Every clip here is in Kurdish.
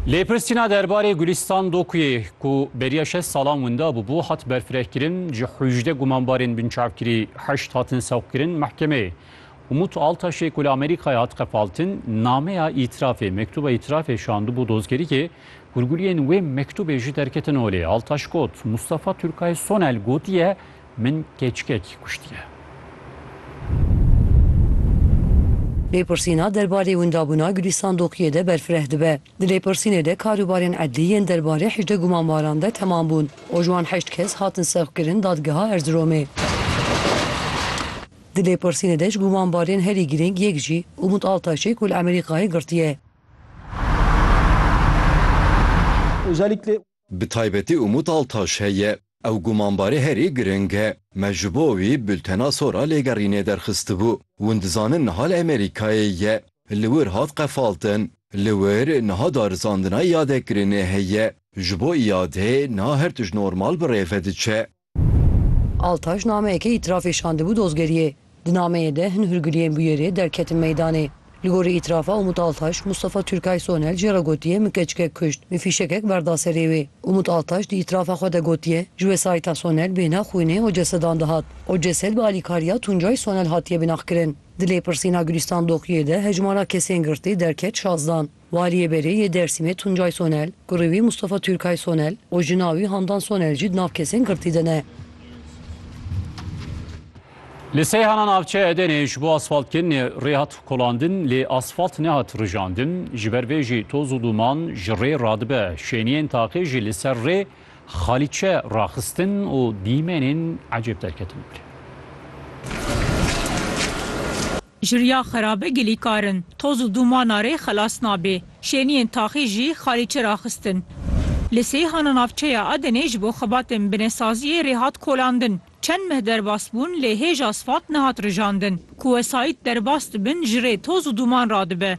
Lêpirsîna derbarê Gulîstan Dokuyê ku beriya şeş salan winda bûbû hat berfirehkirin, ji hûjdeh gumanbarên binçavkirî heşt hatin sewqkirin mehkemeyê. Umut Altaşê ku li Amerîkayê hat qefaltin, nameya îtirafê, mektuba îtirafê şandibû dozgerîkê, hûrguliyên wê mektubê jî derketin holê. Altaş got, Mustafa Turkay Sonel gotiye Min keçikekî kuştiye. Lêpirsîna derbarê windabûna Gulîstan Doqiyê de berfireh dibe. Di lêpirsînê de karûbarên edlî yên derbarê hejdeh gumanbaran de temam bûn û ji wan heşt kes hatin sevqkirin Dadgeha Erziromê. Di lêpirsînê de ji gumanbarên herî girîng yek jî Umut Altaşê ku li Amerîkayê girtiye. Özellikle Bi taybetî Umut Altaş heye. Ew gumanbarê herî giring e. Me ji bo wî bultena sora lêgerînê derxistibû. Hûn dizanin niha li Amerîkayê ye. Li wir hat qefaltin. Li wir niha darizandina îadekirinê heye. Ji bo îadê niha her tişt normal bi rê ve diçe. Altaş nameyekê îtirafê şandibû dozgeriyê. Di nameyê de hin hûrgiliyên bûyerê derketin meydanê. Li gorî îtirafa Umut Altaş, Mustafa Türkay Sonel jê re gotiye min keçikek kuşt, min fîşekek berda serê wê. Umut Altaş di îtirafa xwe de gotiye, ji wesayîta Sonel bêhna xwînê û cesedan dihat. O cesed bi alîkariya Tuncay Sonel hatiye binaxkirin. Di lêpirsîna Gulîstan Doqiyê de hejmara kesên girtî derket şazdan. Waliyê Berê yê Dêrsimê Tuncay Sonel, kurê wî Mustafa Türkay Sonel û jina wî Handan Sonel jî di nav kesên girtî de ne. Li Seyhana navçeya Edenê ji bo asfaltkirinê rê hat kolandin lê asfalt nehat rijandin, ji ber vê jî toz û duman ji rê radibe. Şêniyên taqê jî li ser rê xalîçe raxistin û dîmenên ecêb derketin ber. Ji riya xerabe gilî kar in. Toz û dûmana rê xelas nabê. Şêniyên taxî jî xalî çi raxistin. Li Seyhana navçeya Adenê ji bo xebatên binesaziyê rê hat kolandin. Çend meh derbas bûn lê hêj asfalt nehat rijandin. Ku wesayît derbas dibin ji rê toz û dûman radibe.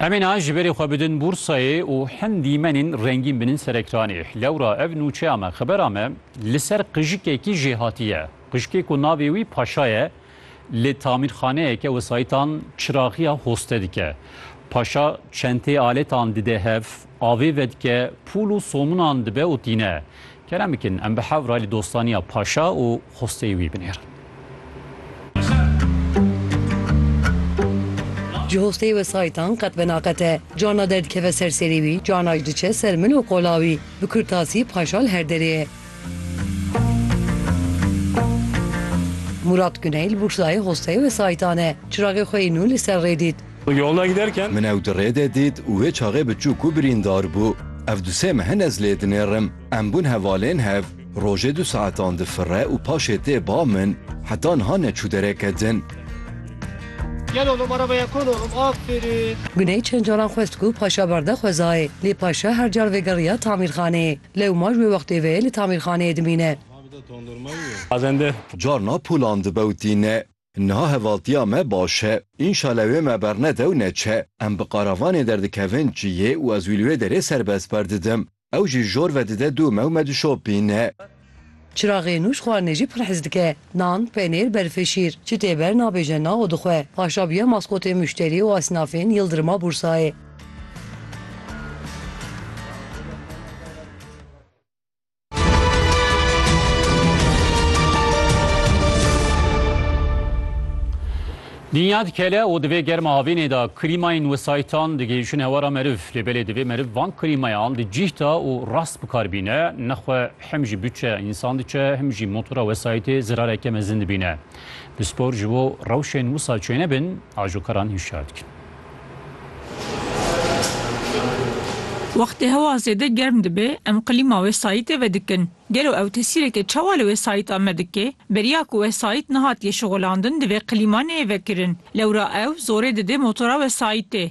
Em ê niha ji berê xwe bidin bûrsayê û hin dîmenên rengîn binin ser ekranê. Lewra ev nûçeya me, xebera me li ser qijikekî jê hatiye. Qijikê ku navê wî Paşa ye, li tamîrxaneyeke wesayîtan çiraxiya hoste dike. Paşa çenteyê aletan dide hev, avê vedike, pûl û sominan dibe û tîne. Kerem bikin em bi hev re li dostaniya paşa û xwesteyê wî binêrin. Ji xwesteyê wesayîtan qet venaxete. Carna derdikeve ser serê wî, carna ji diçe ser min û qola wî. Bi kurtasî paşa li her derê ye. Mûrat Guney li Bûrslayê xwesteyê wesayîtan e. Çiraxê xwe yê nû li ser rê dît. Min ew di rê de dît û wê çaxê bi çû ku birîndar bû. Ev du sê me hene ez lê dinêrim. Em bûn hevalên hev. Rojê du saetan difire û paşê tê ba min. Heta niha neçû dereke din. Guney çend caran xwest ku paşa berde xwezayê. Lê paşa her car vegeriya tamîrxaneyê. Lewma ji wê wextê ve li tamîrxaneyê dimîne. Carna pûlan dibe û tîne. Niha hevaltiya me baş e. Înşale wê me bernede û neçe. Em bi qaravanê derdikevin çiyê û ez wî li wê derê serbest berdidim. Ew jî jor vedide dû me û me dişopîne. Çiraxê nû ji xwarinê jî pir hez dike. Nan, penêr, berfê şîr. Çi tê ber nabêje na û dixwe. Paşa bûye maskotê muşterî û esnafên Yildirima Bûrsayê. Dinya dikele û divê germa havînê de krîmayên wesayîtan digihîjin hewara meriv. Lê belê divê meriv van krîmayan di cîh de û rast bikar bîne. Nexwe hem jî butçe însan diçe hem jî motora wesayîtê zirareke mezin dibîne. Pispor ji bo rewşên wisa çênebin, ajokaran hişyar dikin. Wextê hewa zêde germ dibe em qlîma wesayîtê vedikin. Gelo ew tesîreke çawa li wesayîta me dike? Beriya ku wesayît nehatiye şixulandin divê qlîma neyê vekirin. Lewra ew zorê dide motora wesayîtê.